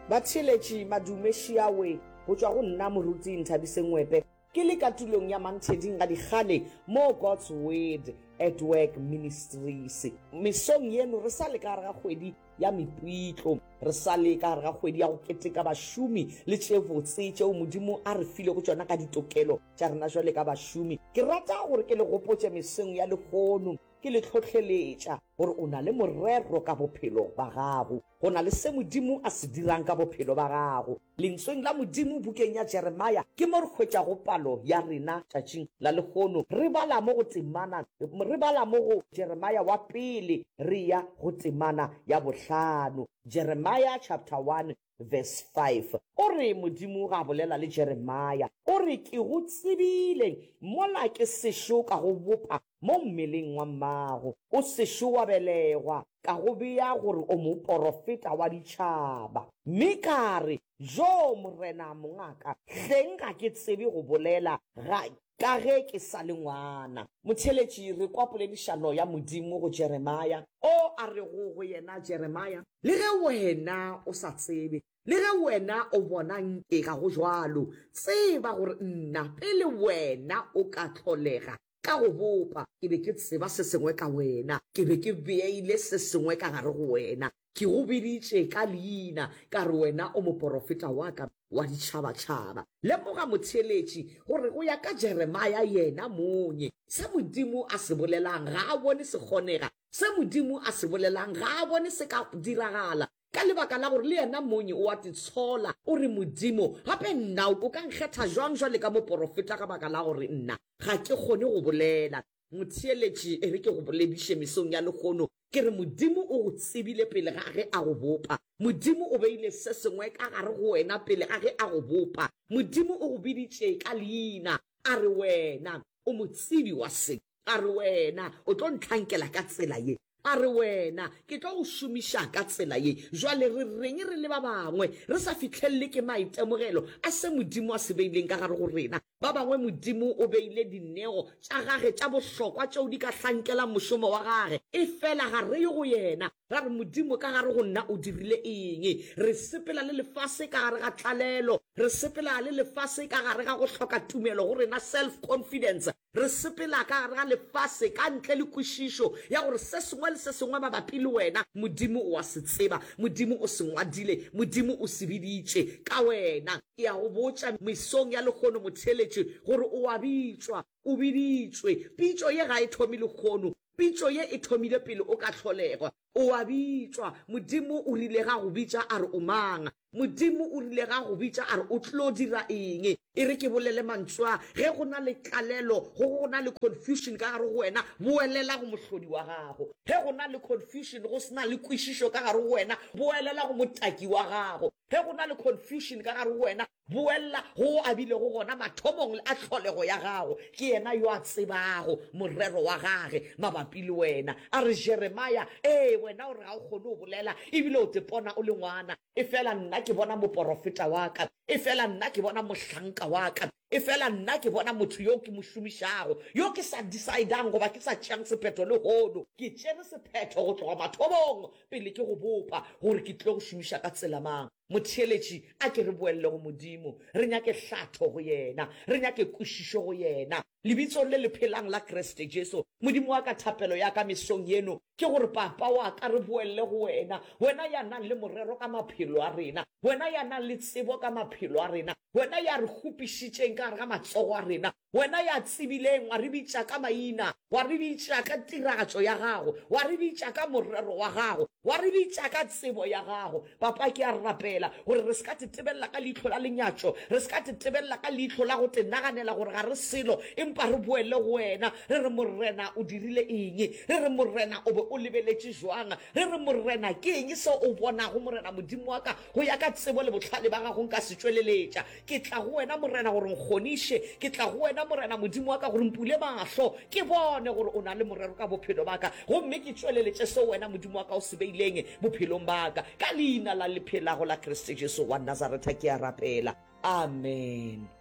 Batheeletši madume Shiawe go tšwa go nna Moruti Nthabise Ngwepe ke le ka tulong ya Mantheding ga dikgale mo God's Word at Work Ministries. Mesong yeno re sa le ka gare ga kgwedi ya mepitlo, re sa le ka gare ga kgwedi ya go keteka bašomi le tše botse tšeo Modimo a re filego tšona ka ditokelo tša rena bjale ka bašomi. Ke rata gore ke le gopotše mesong ya lehono ke le hlohleletša gore o na le morero ka bophelo ba gago, go na le se Modimo a se dirang ka bophelo ba gago. Lentsweng la Modimo bukeng ya Jeremia ke mo re hwetšago palo ya rena tšatšing la lehono. Re bala mo go temana, re bala mo go Jeremia wa pele re eya go temana ya bohlano. Jeremia chapter 1 verse 5, o re, Modimo ga bolela le Jeremia, o re, Ke go tsebile mola ke sešo ka go bopa mo mmeleng wa mmago, o sešo wa belegwa, ka go bea gore o moporofeta wa ditšhaba. Mme ka re, Joo, Morena, mongaka, hleng ga ke tsebe go bolela, ga, Ka ge ke sa le ngwana, motheeletši, re kwa poledišano ya Modimo go Jeremia, o a rego go yena, Jeremia, le ge wena o sa tsebe, le ge wena o bona nke ga go bjalo, tseba gore nna, pele wena o ka hlolega ka go bopa, ke be ke tseba se sengwe ka wena, ke be ke beile se sengwe ka gare go wena, Ke go biditše ka leina, ka re wena o moporofeta wa ka wa ditšhabatšhaba. Lemoga, motheeletši, gore go ya ka Jeremia yena monye, se Modimo a se bolelang ga a bone se kgonega, se Modimo a se bolelang ga a bone se ka diragala, ka lebaka la gore le yena monye o a titshola, o re, Modimo, gape nna o ka nkgetha bjang bjale ka moporofeta ka baka la gore nna ga ke kgone go bolela? Motheeletši, e re ke go bolediše mesong ya lehono, ke re Modimo o go tsebile pele ga ge a go bopa. Modimo o beile se sengwe ka gare go wena pele ga ge a go bopa. Modimo o go biditše ka leina, a re wena o motsebi wa se, a re wena o tlo ntlhankela ka tsela ye. A re, Wena, ke tlo go šomiša ka tsela ye. Bjale re reng re le ba bangwe re sa fihlelelwe ke maitemogelo a se Modimo a se beileng ka gare go rena? Ba bangwe Modimo o beile dineo tša Gage tša bohlokwa tšeo di ka hlankelang mošomo wa Gage, efela ga re ye go Yena ra re, Modimo, ka gare go nna o dirile eng? Re sepela le lefase ka gare ga tlalelo. Re sepela le lefase ka gare ga go hloka tumelo go rena, self-confidence. Re sepela ka gare ga lefase ka ntle le kwešišo ya gore se sengwe le se sengwe mabapi le wena Modimo o a se tseba, Modimo o se ngwadile, Modimo o se biditše ka wena. Ke a go botša mesong ya lehono motheeletše gore o a bitšwa, o biditšwe. Pitšo ye ga e thomi lehono, pitšo ye e thomile pele o ka hlolegwa. O a bitšwa, Modimo o rile ga go bitša a re o mang. Modimo o rile ga go bitša a re o tlo dira eng. E re ke bolele mantswe a, Ge go na le tlalelo gogo go na le confusion ka gare go wena, boelela go mohlodi wa gago. Ge go na le confusion go se na le kwešišo ka gare go wena, boelela go motaki wa gago. Ge go na le confusion ka gare go wena, boelela go o abilego gona mathomong le a tlholego ya gago. Ke yena yo a tsebago morero wa gage mabapi le wena. A re, Jeremia, ee, wena o re ga o kgone go bolela, e bile o tepona o le ngwana. Efela nna ke bona moporofeta wa ka, efela nna ke bona mohlanka wa ka, efela nna ke bona motho yo ke mo šomišago, yo ke sa decidang goba ke sa tšeang sephetho lehono. Ke tšere sephetho go tloga mathomong, pele ke go bopa, gore ke tlile go šomiša ka tsela mang. Motheeletši, a ke re boelele go Modimo, re nyake hlatho go Yena, re nyake kwešišo go Yena. Lebitsong le le phelang la Kriste Jesu, Modimo wa ka, thapelo ya ka mesong yeno ke gore, Papa wa ka, re boelele go Wena, Wena ya nang le morero ka maphelo a rena, Wena ya nang le tsebo ka maphelo a rena, Wena ya re kgopišitšeng ka gare ga matsogo a rena, Wena ya tsebileng, wa re bitša ka maina, wa re bitša ka tiragatšo ya Gago, wa re bitša ka morero wa Gago, wa re bitša ka tsebo ya Gago. Papa, ke a rapela gore re se ka tetebelela ka leihlo la lenyatšo, re se ka tetebelela ka leihlo la go tenaganela gore ga re selo, empa re boele go Wena, re re, Morena, O dirile eng? Re re, Morena, O be O lebeletše bjang? Re re, Morena, ke eng seo O bonago, Morena Modimo wa ka? Go ya ka tsebo le bohlale ba Gago nka se tšweleletša. Ke tla go wena, Morena, gore nkgoniše. Ke tla go wena, Morena Modimo wa ka, gore mpule mahlo, ke bone gore o na le morero ka bophelo ba ka, gomme ke tšweleletše seo wena Modimo wa ka o se beileng bophelong ba ka. Ka Leina la le phelago la Kriste Jesu wa Nazaretha ke a rapela. Amen.